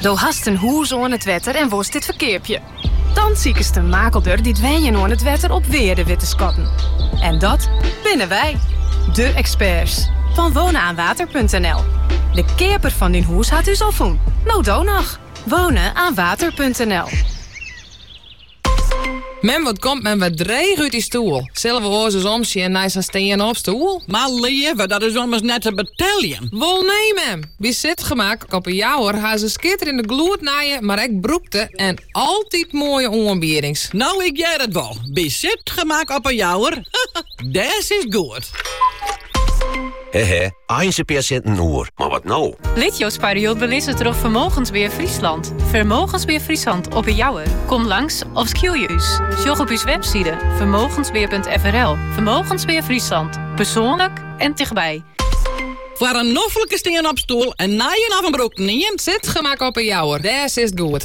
Do hast in hûs oan it wetter en wolst dit ferkeapje? Dan sikest in makelder dy't wenjen oan it wetter op wearde wit te skatten. En dat binne wy, de eksperts fan wonenaanwater.nl. De keaper fan dyn hûs hat ús al fûn. No do noch! Wonenaanwater.nl. Mem, wat komt men wer dreech út dy stoel. Sille we oars ris omsjen nei sa'n stean-opstoel? Mar leave, dat is ommers net te beteljen. Wol nee, mem! By Sitgemak op 'e Jouwer ha se skitterende gloednije, mar ek brûkte en altyd moaie oanbiedings. No, ik hear it wol. By Sitgemak op 'e Jouwer, dêr sitst goed. Hehe, einliks in pear sinten oer, mar wat no? Lit jo sparjild belizze troch Vermogensbeheer Friesland. Vermogensbeheer Friesland op 'e Jouwer. Kom langs of skilje ús. Sjoch op ús webside vermogensbeheer.frl. Vermogensbeheer Friesland. Persoonlijk en dichtbij. Foar in noflike stean-opstoel, in nije of in brûkten ien, Sitgemak op 'e Jouwer. Dêr sitst goed.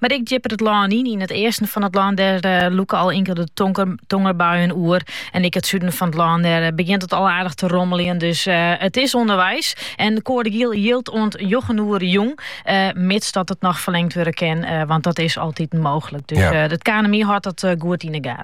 Mar ek djipper it lân yn. Yn it easten fan it lân der uh, eh, lûke al inkelde tongerbuien oer. En ek yn it suden fan it lân dêr eh, begjint it al aardich te rommeljen. Dus eh, it is ûnderweis. En de koade giel jildt oant njoggen oere jûn. Uh, mits dat it noch ferlingd wurde kin. Want dat is altyd mooglik. Dus it KNMI hâldt dat goed yn 'e gaten.